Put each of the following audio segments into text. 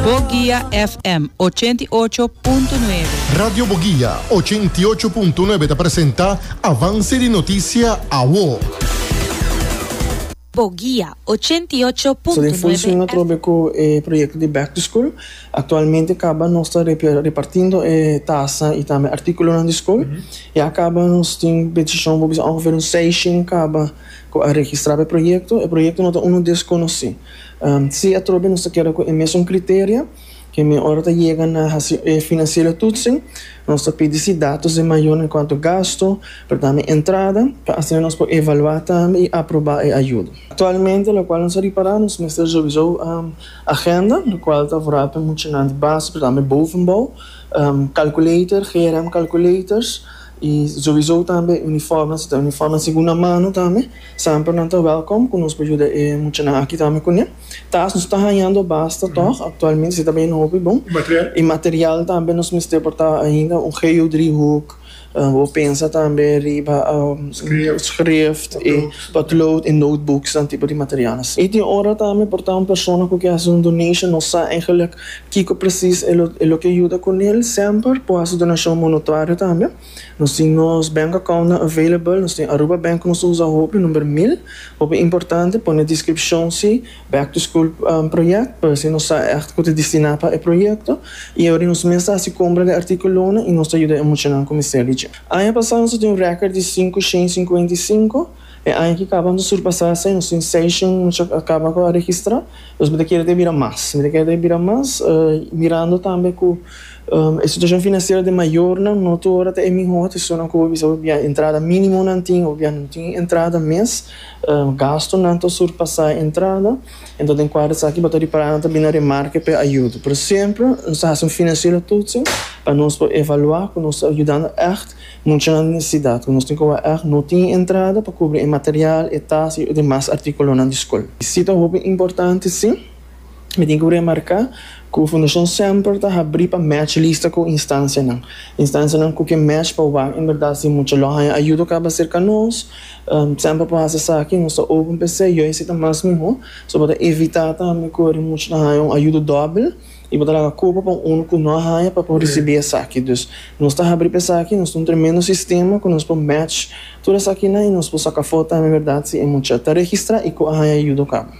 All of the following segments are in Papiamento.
Boguia FM ochenta i ocho punto nuebe. Radio Boguia ochenta i ocho punto nuebe ta presenta Avance di Noticia Awo. Boguia ochenta i ocho punto nuebe. So den función atrobe cu e proyecto di Back to School. Actualmente caba nos ta repartindo e taza y tambe articulonan di school. Ya caba nos tin bendicion bo bisa ongeveer un seiscienca caba cu a registra pa e proyecto. E proyecto no ta uno desconoci. Si atrobe nos ta keda ku e mesun kriterio, ke mi ora ta yega na hasi e finansiero tutsin, nos ta pidi si datos di mayor en kuanto gasto, pero tambe entrada, pa asina nos por evaluá tambe i aprobá e ayuda. Aktualmente, lokual nos a ripará, nos mester revisá agenda, lokual ta vorá pa muchanan di base, pero tambe bovenbou, kalkulator, GRM kalkulators, i revisá tambe uniforme, si ta uniforme segunda mano tambe. Semper nan ta wèlkom ku nos por yuda e muchanan aki tambe kuné. Tas nos ta hañando basta tòg, aktualmente si ta bini hopi bon. I material tambe nos mester por ta ainda un geodriehoek, bo pensa tambe riba schrift i potlood i notebooksnan tipo di materialnan. I tin ora tambe por ta un persona ku ke hasi un donation, no sa eigelik kiko presis e lo ke yuda kunel, semper por hasi donashon monotuario tambe. Nos tin nos bank account nan available, nos tin Aruba Bank cu nos ta usa hopi, number mil. Hopi importante pone descripcion si back to school project pa así nos sa echt cu ta destina pa e proyecto y awor nos mes ta haci compra di articulonan y nos ta yuda e muchanan cu mester di dje. Aña pasa nos a tin un record di sinku shen sinkuenta y sinku, e aña ki caba nos a surpasa esei, nos tin seis shen mucha cu a caba cu a registra, pues mi ta kere ta e bira mas, mi ta kere ta e bira mas mirando tambe cu E situashon finansiero den mayornan no tur ora ta e mihó. Ta esunnan ku bo bisa bo bia entrada mínimo nan tin o bo bia no tin entrada mes. Gastunan ta surpasá e entrada. Enton den kuadro esaki bo ta ripará nan ta bini na remarke pa e ayudo. Pero semper nos ta hasi un finansiero tutsu pa nos por evaluá ku nos ta yudando ègt muchanan di nesesidat ku nos tin kobá ègt no tin entrada pa kubri e material, e tas i e demas artíkulonan di skol. Si ta hopi importante, sí. Mi tin ku remarká ku Fundashon semper ta habrí pa mèch lista ku instansianan. Instansianan ku ke mèch pa wak en bèrdat si mucha lo haña ayudo kaba serka nos. Semper por hasi esaki nos ta open pa esei, yo isi ta mas mihó. So bo ta evitá tambe ku e mucha ta haña un ayudo dòbel i bo ta laga kopa pa un unu ku no a haña pa por risibí esaki. Dus nos ta habrí pa esaki, nos ta un tremendo sistema ku nos por mèch tur esakinan i nos por saka fo tambe en bèrdat si e mucha ta registrá i ku a haña ayudo kaba.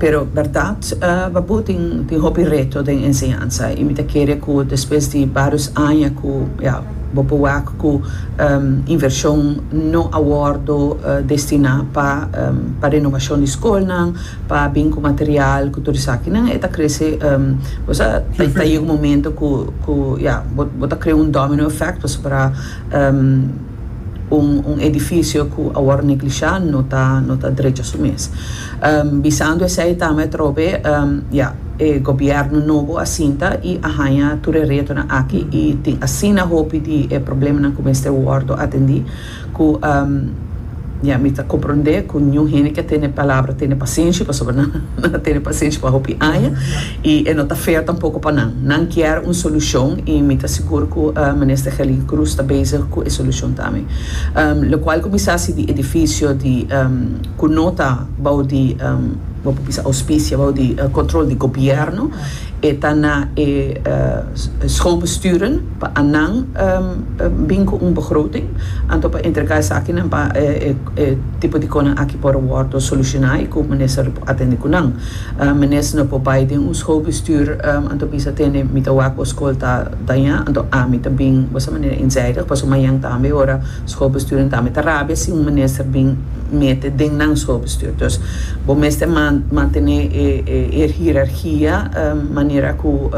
Pero berdad, baboe tin tin hopi reto den enseñansa y mi ta kere cu despues di barios aña cu ya bo por wak cu inversion no a wordo destina pa pa renovacion di scolnan, pa bin cu material cu tur esakinan e ta crece bo sa ta yega un momento cu cu ya bo ta crea un domino effect pasobra. Un un edifisio ku a wòrdu neglishá no ta no ta drecha su mes. Bisando esei ta ama e trobe, ya, e gobièrnu nobo a sinta i a haña tur e retonan aki i tin asina hopi di e problemanan ku mester wòrdu atendí ku, ya, mi ta komprondé ku niun hende ke a tene palabra tene pasenshi, pasobra nan a tene pasenshi pa hopi aña. y e no ta feo tampoco pa nan. Nan kier un solucion y mi ta sigur cu Minister Gelin Cruz ta bezig cu e solucion tambe. Locual cuminsa si di edificio di cu no ta bao di bo por bisa auspicia, bao di control di gobierno, e ta na e schoolbesturen pa anan bin cu un begroting anto pa entrega esakinan pa e tipo di conan aki por wordo soluciona y cu Minister lo por atende cu nan. Menes no por bai den un schoolbestuur, anto bisa tene mi ta wak bo school ta daña, anto ami ta bin bo sa manera inzijdig, paso mañan tambe ora schoolbesturen tambe ta rabia si un minister bin mete den nan schoolbestuur. Dus bo mester mantene e hierarchia manera cu.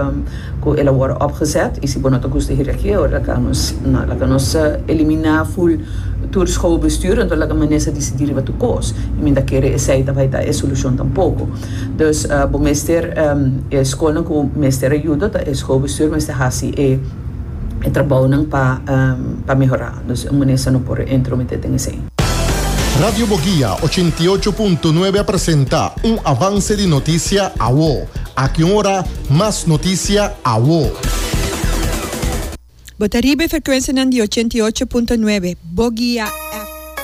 cu el a worde opgezet y si bo no ta gusta hiri aki awe laga nos na laga nos elimina full tur schoolbestuur enton laga minister decidi riba tur cos y mi ta kere esey ta bay ta e solucion tampoco dus bo mester e schoolnan cu mester ayudo ta e schoolbestuur mester haci e trabounan pa pa mehora dus un minister no por entromete den esey. Radio Boguia ochenta i ocho punto nuebe a presenta un avance di noticia awo. Aki un ora. Mas noticia awo. Bo ta riba e frecuencianan di ochenta i ocho punto nuebe, Bogia F.